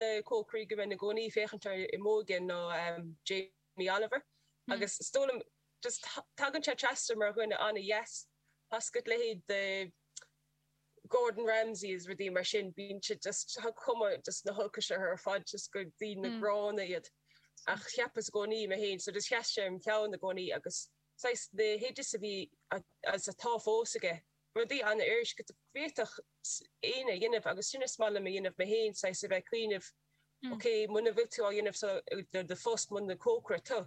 cócairí go mbeinn i gcónaí ag féachaint air i m'óige nó Jamie Oliver agus is dóigh liom just tagann sé trasna mar dhuine an-deas, seachas leithéid de Gordon Ramsey is rudaí mar sin, bíonn siad just tá cuma just na holcais orthu ar fad just gur daoine gránna iad ach cheapas i gcónaí mé féin, so just sheas sé im cheann i gcónaí agus saghas na hoidis a bhí agus atá fós aige. rudaí an-fhuirist go bhféadfadh éinne a dhéanamh agus sin is maith liom a dhéanamh mé féin, saghas a bheith ag cuimhneamh, ok, muna bhfuil tú á dhéanamh mar do phost, muna cócaire tú,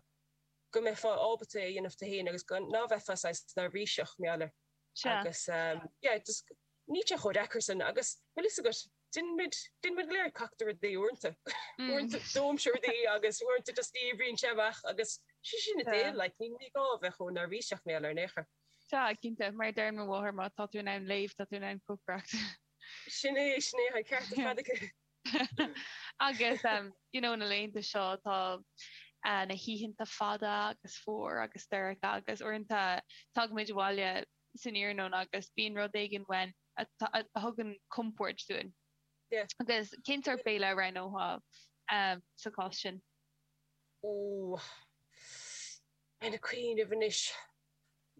go mbeifeá ábalta é a dhéanamh tú féin agus go ná bheifeá saghas neirbhíseach mar gheall air agus yeah, just níl sé chomh deacair sin agus bhfuil fhios agat, déanann muid, déanann muid go léir cac de rudaí uaireanta, uaireanta dóimse rudaí agus uaireanta just oibríonn sé amach agus sin sin an deal like ní gá a bheith chomh neirbhíseach mar gheall air ar aon chor. Sea, cinnte, mar a deireann mo mháthair, má tá tú in ann léamh, tá tú in ann cócaireacht. Sin é, sin é, tá an ceart ar fad aici. Agus, you know, na laethanta seo tá na hoícheanta fada agus fuar agus dorcha agus uaireanta tagaimid abhaile san iarnóin agus bíonn rud éigin uainn a thugann compord dúinn. Agus cén sórt béile a roghnófá sa chás sin. Ó, táim ag cuimhneamh anois.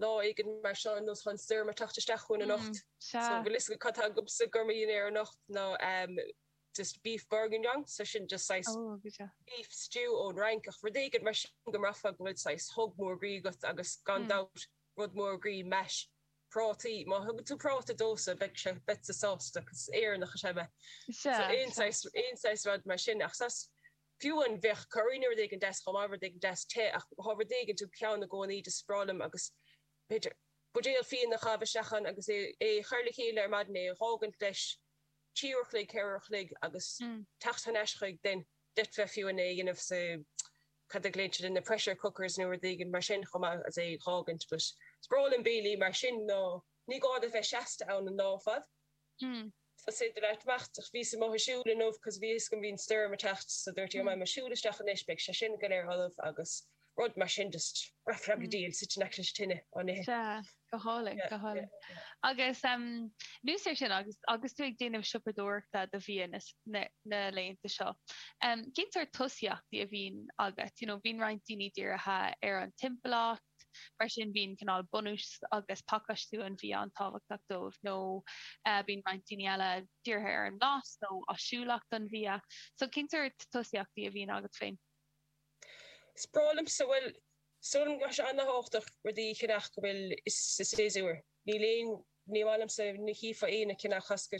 lá éigin mar seo nuair atá stoirm ag teacht isteach chugainn anocht. So bhfuil fhios agat cad tá agamsa dom dhinnéar anocht ná just beef bourguignon, so sin just saghas beef stew ón bhFrainc ach rud éigin mar sin go mbraithfeá go bhfuil saghas hug mór groí agat agus gan dabht rud mór groí mash prátaí. Má thugann tú práta domhsa beidh mise sásta cos is Éireannach is ea mé. So aon saghas aon saghas rud mar sin ach saghas Fiú amháin bheadh curry nó rud éigin deas, chomh maith, rud éigin deas te, ach tabhair rud éigin te, ceann i gcónaí is breá liom agus, b'fhéidir, buidéal fíon a chaitheamh isteach ann agus é a chur le chéile ar maidin, é a dh'fhágaint leis trí uair a chloig, ceithre uair a chloig agus teacht thar n-ais chuige, d'fhéadfá fiú amháin é a dhéanamh sa, cad a ghlaonn siad ar na pressure cookers nó rud éigin mar sin, chomh maith, is é a dh'fhágaint. But is breá liom béilí mar sin mar ní gá duit bheith seasta ann an lá ar fad. Hm. sa sidhe leat amach ach bhíos amuigh ag siúl inniu cos bhí a fhios agam bhí an stoirm ag teacht so dúirt mé faighidh mé mo shiúl isteach anois beidh sé sin go léir ullamh agus rud mar sin just rap rap Hm. díreach suite in aice leis an tine á ithe. Sea, go hálainn, go Yeah, yeah, hálainn. yeah. Agus um, anuas air sin agus agus tú ag déanamh siopadóireachta do bhia na, na, na laethanta seo. Um, Cén sórt tosaíochtaí a bhíonn agat? You know, bíonn roinnt daoine dírithe ar an timpeallacht, teacht. Mar sin, bíonn cineál bunús agus pacáistiú an bhia an-tábhachtach dóibh, nó bíonn roinnt daoine eile dírithe ar an mblas nó áisiúlacht an bhia. So, cén sórt tosaíochtaí a bhíonn agat féin? Is breá liomsa, bhuel, sílim go bhfuil sé an-tábhachtach rudaí a cheannach go bhfuil, sa séasúr. Níl aon, ní maith liomsa, ní chífeá aon a cheannach as go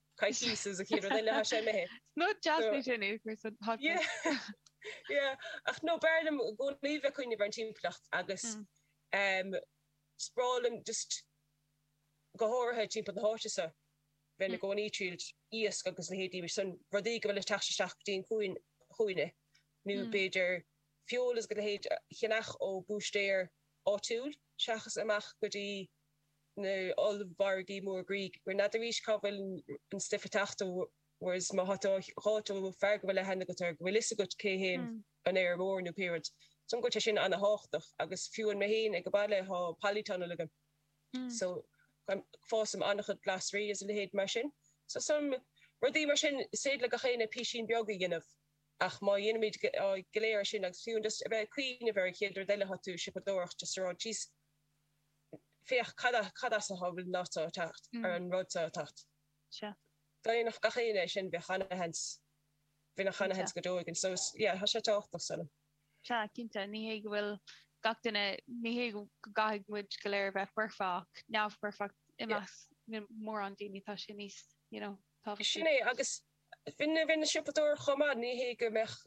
Coicís is a chéad rud eile, tá sé léi. Nó deasnaigh sé inniu, cuir san podcast. Yeah, ach nó b'fhearr liom i gcónaí bheith ag cuimhneamh ar an timpeallacht agus is breá liom just go háirithe timpeall na háite so bheinn i gcónaí ag triailt iasc agus leithéidí mar san rudaí go bhfuil ag teacht isteach go dtí an cuan chugainne nó b'fhéidir feoil is a leithéid a cheannach ó búistéir áitiúil seachas amach go dtí na n-ollmhargaí móra like, gur n'fheadaraís cá bhfuil an stuif ag teacht ó Whereas má tá tú á fháilt ó fear go bhfuil aithne agat air, go bhfuil fhios agat cé hé an feirmeoir nó pé rud, so tá sé sin an-tháchtach agus fiú amháin mé fhéin ag baile tá polytunnel agam so fásaim an-chuid glasraí is a leithéid mar sin so is dóigh liom rudaí mar sin is féidir le gach éinne písín beag a dhéanamh ach má dhéanaimid go léir é sin agus fiú amháin just a bheith ag cuimhneamh ar an chéad rud eile tá tú ag siopadóireacht just a rá jeez féach cad as atá an fheoil so ag teacht, ar an rud so ag teacht. Dá ndéanfadh gach éinne é sin, bheadh ana-sheans, bheadh gach aon seans go deo againn. So is, yeah, tá sé tábhachtach is dóigh liom. Sea, cinnte. Ní hé go bhfuil gach duine, ní hé go gcaithfidh muid go léir a bheith foirfeach, neamh-fhoirfeach i measc mórán daoine, tá sé níos, you know, tábhachtaí. Sin é, agus bhí na siopadóir chomh maith, ní hé go mbeadh,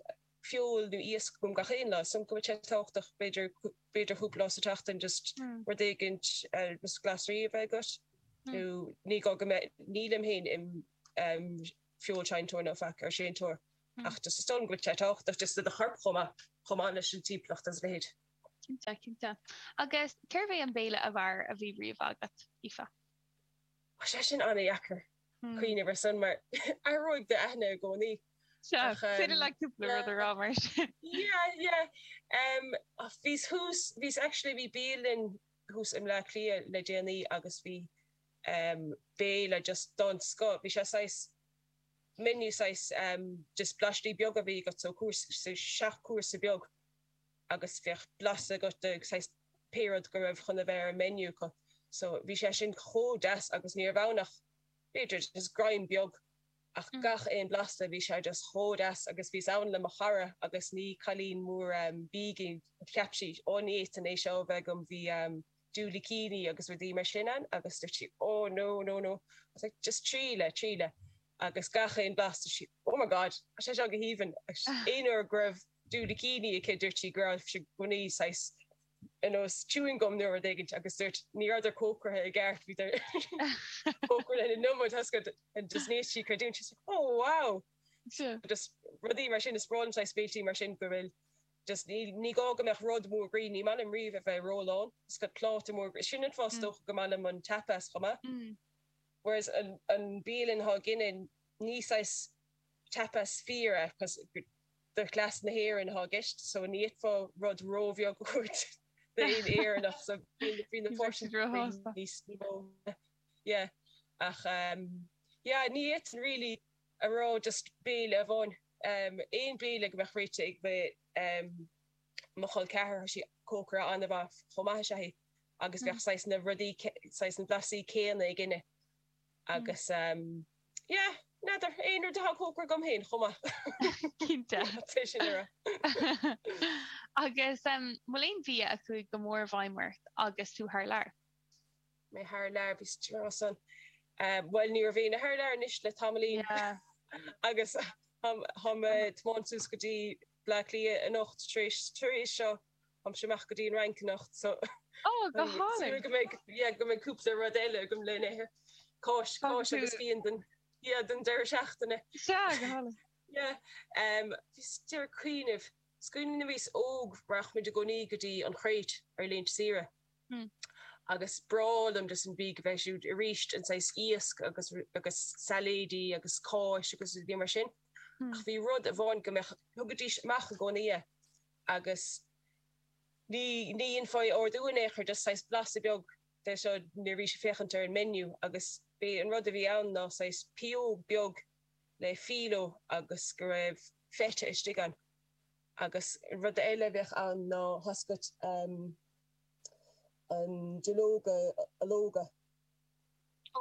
feoil nó iasc agam gach aon lá, is dóigh liom go mbeadh sé tábhachtach b'fhéidir, b'fhéidir cúpla lá sa tseachtain just rud éigin just glasraí a bheith agat nó ní gá go mbeadh, nílim fhéin im em feoilséantóir nó faic ar séantóir ach just is dóigh liom go mbeadh sé tábhachtach just do do chorp chomh maith, chomh maith leis an timpeallacht is a leithéid. Cinnte, cinnte. Agus cérbh é an béile ab fhearr a bhí riamh agat, Aoife? Tá sé sin ana dheacair. Cuimhneamh air san mar athróidh d'aigne i gcónaí. Sea, féidir leat cúpla rud a rá mar sin. Yeah, yeah. Bhíos thuas, bhíos actually, bhí bialann thuas i mBleá Cliath le déanaí agus bhí béile just den scoth. Bhí sé saghas menu, saghas just blaistí beaga a bhí agat, so cúrsa, seacht chúrsa beag. agus bheadh blas agat de saghas pé rud go raibh chun a bheith ar an menu acu so bhí sé sin chomh deas agus ní raibh ann ach b'fhéidir just greim beag ach gach aon blasta bhí sé just chomh deas agus bhíos ann le mo chara agus ní cailín mór bídh í cheap sí ó ní fhéadfainn é seo a bheith agam bhí diúilicíní agus rudaí mar sin ann agus dúirt sí ó no no no I was like just triail é triail é agus gach aon blas dúirt sí oh my God tá sé seo go haoibhinn agus aon uair go raibh Do na cinn aici dúirt sí go raibh sé i gcónaí saghas ar nós chewing gum nó rud éigin agus dúirt ní rabhadar cócraithe i gceart bhíodar cócraithe an iomad tá a fhios agat and just ní fhéadfadh sí creidiúint she was like oh wow just rudaí mar sin is breá liom saghas béiltí mar sin go bhfuil just ní ní gá go mbeadh rud mór groí ní maith liom riamh a bheith rólán tá a fhios agat pláta mór groí sin an fáth is dócha go maith liom an tapas chomh maith whereas an an bialann thá againne ní saghas tapas fíor é cos do chleas na hÉireann atá i gceist, so ní fhéadfá rud róbheag a thabhairt d'aon Éireannach, so bhí na portions níos mó, yeah, ach yeah, ní fhéadfainn really a rá just béile amháin, aon bhéile go mbeadh réite ag mo chol ceathrair, though sí cócaire an-mhaith chomh maith is ea í, agus bheadh saghas na rudaí, saghas na blasaí céanna againne. Agus yeah, n'fheadar, aon rud atá cócraithe agam féin chomh maith. Cinnte. Tá sé sin ar a. Agus an bhfuil aon bhia a chuaigh go mór i bhfeidhm ort agus tú thar lear? Mé thar lear, bhí strás ann. Bhuel, ní raibh éinne thar lear anois le tamaillín. Yeah. Agus táim ag tiomáint suas go dtí Bleá Cliath anocht tar éis seo. Táimse amach go dtí an Fhrainc anocht so táim ag súil go mbeidh, yeah, go mbeidh cúpla rud eile agam le n-ithe. Cáis, cáis agus fíon don, yeah, don deireadh seachtaine. Sea, go hálainn. Yeah. Bhíos ag iarraidh cuimhneamh. Is cuimhin liom nuair a bhíos óg rachaimid i gcónaí go dtí an Chréit ar laethanta saoire agus bhreá liom just an bia a bheith siúd aríst an saghas iasc agus, agus sailéidí agus cáis agus rudaí mar sin ach bhí rud amháin go mbeadh, thugaidís amach i gcónaí é agus ní dhéanfá é a ordú in aon chor just saghas blaiseadh beag de seo nuair a bhís ag féachaint ar an menu agus b'é an rud a bhí ann ná saghas pióg beag le filo agus go raibh feta istigh ann agus rud eile a bheadh ann ná tá a fhios agat an duilleoga ológa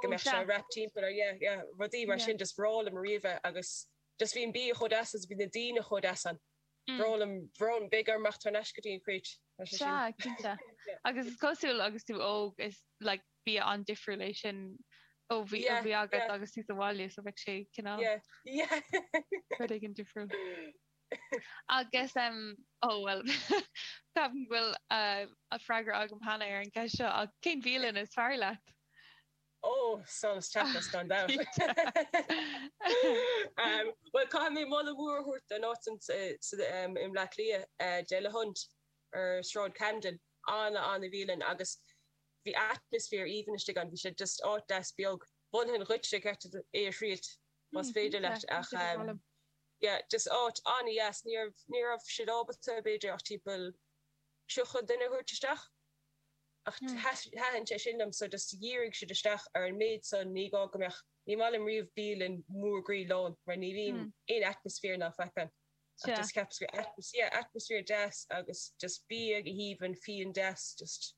go mbeadh sé wrapped timpeall ar yeah yeah rudaí mar sin just bhreá liom riamh é agus just bhí an bia chomh deas agus bhí na daoine chomh deas ann. Bhreá liom bhreá beidh orm teacht thar n-ais go dtí an Chréit. Tá sé Sea, sin. cinnte. Agus is cosúil agus tú óg is like bia an-difriúil é sin ó bhia Yeah, bhí agat yeah. agus tú sa bhaile so bheadh sé cineál Yeah, yeah. rud éigin difriúil. Agus em ó bhuel ceapaim go bhfuil eh, freagra agam cheana ar an gceist seo ach cén bhialann is fearr leat? Ó, solas Tapas, gan dabht. Bhuel, caithfidh mé moladh mór a thabhairt don áit i mBleá Cliath, De la Hunt, ar Shráid Camden. An-an-bhialann agus bhí atmaisféar aoibhinn istigh ann. Bhí sé just áit deas beag. Mholfainn dhuit, i gceart é a thriailt más féidir leat ach yeah, just áit an-deas. Ní raibh siad ábalta b'fhéidir ach timpeall 30 duine a thabhairt isteach. Ach thaitin sé sin liom so just dhírigh siad isteach ar an méid san, ní gá go mbeadh, ní maith liom riamh bialann mhór groí lán mar ní bhíonn aon atmaisféar ná faic ann ach just cheapas go, yeah, atmaisféar deas agus just bia go haoibhinn, fíon deas, just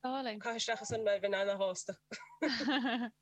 caitheadh isteach ansan mé, bheinn ana-shásta.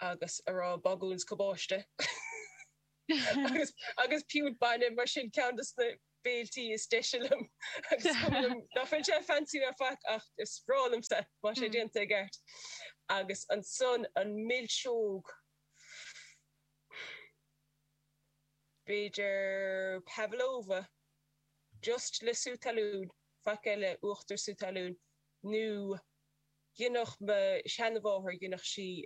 agus ar ndóigh bagún is cabáiste agus piúnt bainne, mar sin, ceann de na béilí is deise liom agus is cuma liom nach bhfuil sé fancy ná faic ach is breá liomsa má sé déanta i gceart. Agus ansan an milseog, b'fhéidir pavlova, just le sú talún, faic eile, uachtar sú talún, nó. Dhéanfadh mo sheanmháthair, dhéanfadh sí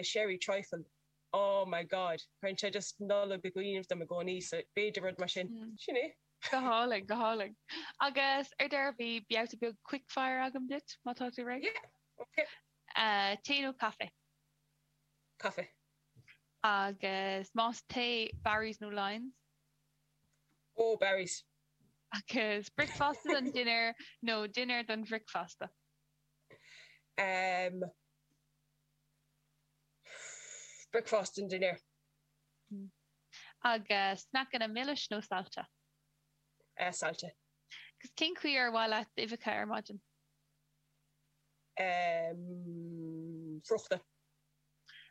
sherry trifle, oh my God, cuireann sé just Nollaig i gcuimhne dom i gcónaí, so b'fhéidir rud mar sin. Sin é. Go hálainn, go hálainn. Agus ar deireadh, beidh babhta beag quickfire agam duit, má tá tú réidh. Yeah, ok. Tae nó caife? Caife. Agus más tae, Barry's nó Lyons? Oh, Barry's. Agus bricfeasta don dinnéar nó dinnéar don bhricfeasta? Em. Bricfeasta don dinnéar. Agus sneaiceanna milis nó sailte? Eh, sailte. Agus cén chaoi ar mhaith leat uibheacha ar maidin? Em. Scrofa.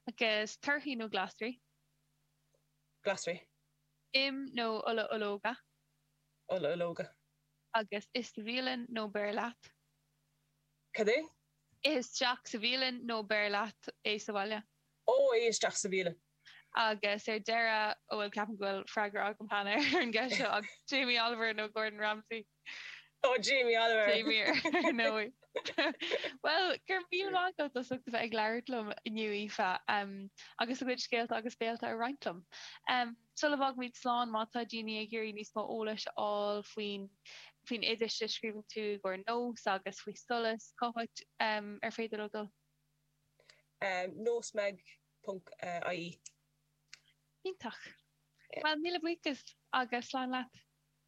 Agus torthaí nó glasraí? Glasraí. im nó ola ológa. ola ológa. agus ith sa bhialann nó beir leat. Cad é? Ith isteach sa bhialann nó beir leat é abhaile. Ó, ith isteach sa bhialann. Agus ar deireadh, bhuel, ceapaim go bhfuil freagra agam cheana ar an gceist seo, ach Jamie Oliver nó Gordon Ramsay? Ó, Jamie Oliver! Same here, ar ndóigh. Bhuel, go raibh míle maith agat as ucht a bheith ag labhairt liom inniu, Aoife, agus do chuid scéalta agus béilí a roinnt liom. Sula bhfágaimid slán má tá daoine ag iarraidh níos mó eolais a fháil faoi, faoi na hoidis a scríobhann tú i gcomhair nós agus faoi solas, cá háit ar féidir leo dul? Nósmag ponc ie. Iontach. Bhuel, míle buíochas agus slán leat.